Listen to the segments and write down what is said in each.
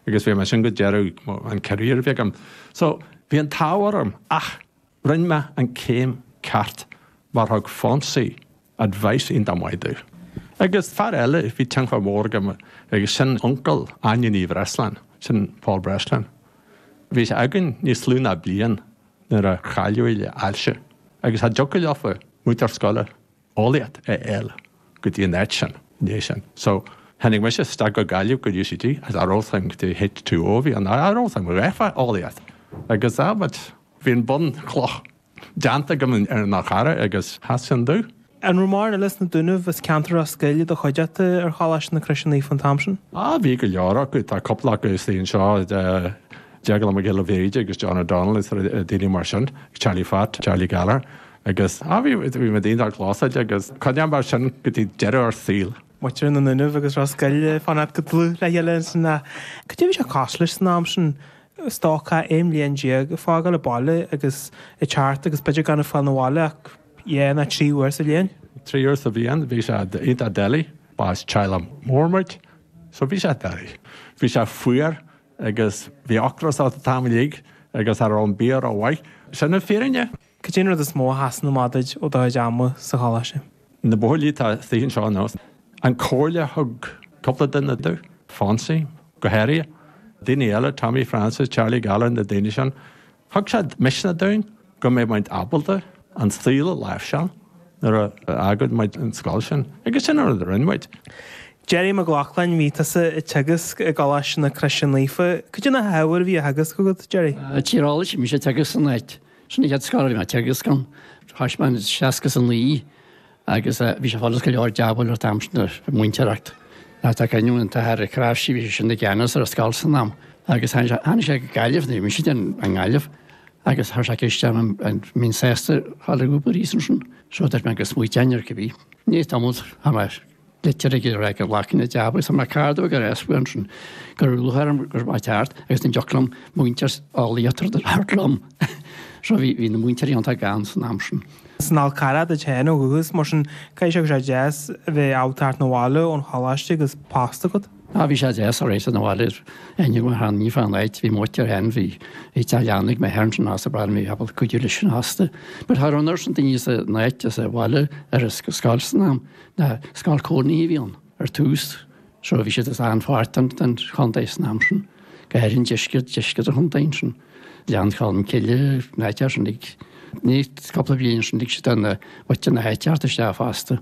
Agus bhí mé ansin go deireadh an career a bhí agam. So, bhí an t-ádh orm ach rinne mé an céim ceart mar thug Fonsie advice iontach maith domh. Agus fear eile a bhí tionchar mór aige agus sin uncail Áine Ní Bhreasláin, sin Paul Breslin. Bhí sé againn níos lú ná bliain nuair a chailleadh le ailse agus cha dtiocfadh leofa múinteoir scoile eolaíocht a fháil go dtí an áit sin ina dhiaidh sin. So, tháinig mise isteach go Gaillimh go UCG as I wrote thing to H2O a bhí ann. I wrote thing, gheofá eolaíocht agus ah but bhí an bhunchloch déanta agam ar an Fhál Charrach agus sheas sin domh. An raibh mórán eile as na Dúnaibh is an ceantar ar scoil i do chuideachta ar Choláiste na Croise Naofa an t-am sin? Ah, bhí go leor acu, tá cúpla acu istigh anseo, Deaglán Mac Giolla Bhríde agus John O'Donnell is daoine mar sin, Charlie Phat, Charlie Gallagher. Agus, á, bhí, bhí muid iontach close agus choinnigh mar sin go dtí deireadh ár saoil. Muintir na nDúnaibh agus Ros Goill ag fanacht go dlúth le chéile ansin nó cad é a bhí sé cosúil leis san am sin? Stócach aon bhliain déag ag fágáil an bhaile agus ag teacht agus b'fhéidir gan ag fáil 'na bhaile ach dhá nó trí uair sa bhliain. Trí uair sa bhliain bhí sé iontach doiligh, ba as teaghlach mór muid so bhí sé doiligh. Bhí sé fuar agus bhí ocras ort an t-am uilig agus cha raibh an bia rómhaith. Sin an fhírinne. Cad é an rud is mó a sheasann amach duit ó do chuid ama sa choláiste? Na buachaillí atá istigh anseo inniu. An comhairle a thug cúpla duine domh, Fonsie go háirithe, daoine eile, Tommy Francis, Charlie Gallagher, na daoine sin, thug siad misneach dúinn go mbeadh muid ábalta an saol a láimhseáil nuair a fhágfadh muid an scoil sin. Agus sin an rud a rinne muid. Jerry Mag Lochlainn, Bhí tusa ag teagasc i gColáiste na Croise Naofa. Cad é na hábhair a bhí á theagasc agat, Jerry? Thosaigh mise ag teagasc san áit. Sin an chéad scoil a bhí mé ag teagasc ann. Thosaigh mé in seasca 's a naoi agus eh bhí sé furast go leor jab a fháil an t-am sin de mhúinteoireacht. Tá tá cailín an t-athair a crash sí bhí sé sin i gceannas ar an scoil san am agus tháinig sé tháinig sé go Gaillimh ní bhí sé den an nGaillimh agus thá sé ag isteach an an mbeinn sásta thá le go Paris ansin. So dúirt mé go smaoiteoinn air cibé. I ndiaidh tamall fuair mé litir ag iarraidh go nglacfainn an jab agus tá mé cardamh ag ar easbhail ansin go raibh luath orm go raibh mé ceart agus ní dheoc liom muintir á liatar de thart liom. So bhí bhí na múinteoirí iontach gann san am sin. Is as an Fhál Charrach duit féin ó dhúchas mar sin caithfidh sé go raibh sé deas a bheith ag gabháil thart 'na bhaile ón choláiste agus post agat. Á bhí sé deas a bheith sa bhaile is ainneoin mar tháinig mé fán áit bhí mo mhuintir féin bhí bhí teach leanna ag m'athair ansin agus bhí mé ábalta cuidiú leis sin fosta. But tháinig ansin daoine as an áit as an bhaile ar an scoil san am Bhuel scoil chónaithe a bhí ann ar tús, so bhí siad as achan pháirt den chontae san am sin, go háirithe an deisceart, deisceart an chontae ansin, Gleann Cholm Cille, na háiteacha sin ag, ní, cúpla bliain ansin lig siad bunadh na háite isteach fosta.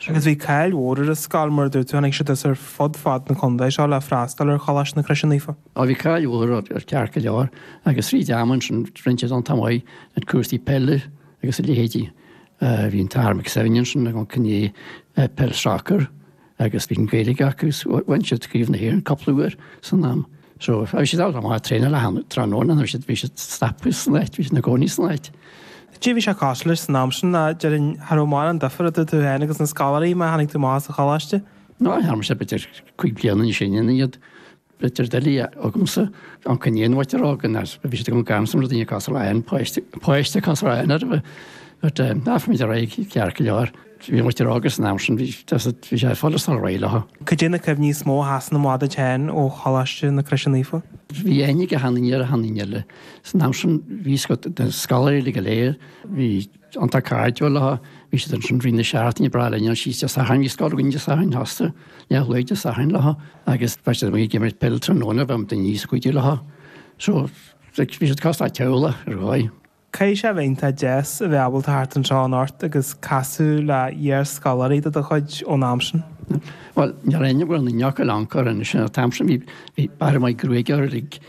Agus bhí cáil mhór ar an scoil mar a dúirt tú, tháinig siad as ar fud fad na contae seo le freastal ar Choláiste na Croise Naofa. Á bhí cáil mhór air ceart go leor agus fríd an am ansin rinne siad iontach maith ar chúrsaí peile agus a leithéidí. Bhí an t-am acu san am sin ag imirt peil sacair agus bhí an Gaelic acu agus bhain siad Craobh na hÉireann cúpla uair san am. So bhí siad ábalta a bheith ag traenáil achan tráthnóna nó siad bhí siad ag stopadh san áit, bhí siad ina gcónaí san áit. Caidé bhí sé cosúil leis san am sin, déarfainn cha raibh mórán difir idir tú féin agus na scoláirí mar tháinig tú amach as an choláiste? Ná bhí mise b'fhéidir cúig bliana níos sine ná iad. B'fhéidir doiligh agamsa an coinne ná nuair a bhí rudaí go deas, bhí siad agam gan sam le daoine cás araon, páiste, páiste cás araon ar bith. But eh, d'éirigh muid ar aghaidh ceart go leor. Bhí uait a rá agus an am sin bhí, deas, bhí sé fosta ina rialacha. Caidé na cuimhní is mó a sheasann amach duit fhéin ó Choláiste na Croise Naofa? Bhí aithne ag achan nduine ar achan nduine eile. San am sin bhí a fhios agat, na scoláirí uilig go léir, bhí. an t-acáirdiúil acu, bhí siad ansin i rith na seachtaine, breá linn an síos Dé Sathairn, bhí scoil againn Dé Sathairn fosta, leathlá Dé Sathairn le acu, agus bheadh siad amuigh ag imirt peil tráthnóna, bheadh daoine níos faide le acu, so like bhí siad cosúil le teaghlach ar dhóigh. Caithfidh sé a bheith iontach deas a bheith ábalta teacht anseo anocht agus casadh le iar-scoláirí de do chuid ón am sin. Bhuel, níor aithnigh go leor acu corruair anois, an t-am sin bhí bhí b'fhearr a bheith gruaig orm, like.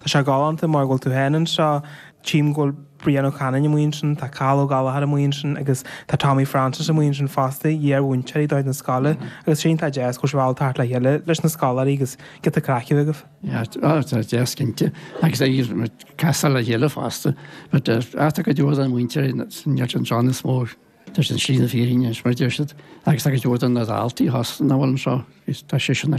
Tá sé galánta mar chan fhuil tú féin anseo. Tchím go bhfuil Brian Ó Canainn amuigh ansin, tá Cathal Ó Gallachóir amuigh ansin agus tá Tommy Francis amuigh ansin fosta, iar-mhúinteoirí de chuid na scoile agus sin, tá deis agaibh siúl thart le chéile leis na scoláirí agus giota craic agaibh. Tá, tá, tá deis cinnte agus bíonn muid ag casadh le chéile fosta, but tá go leor de na múinteoirí imithe ar shlí na fírinne is mar a deir siad agus go leor de na daltaí chomh maith leis sin is tá sé sin na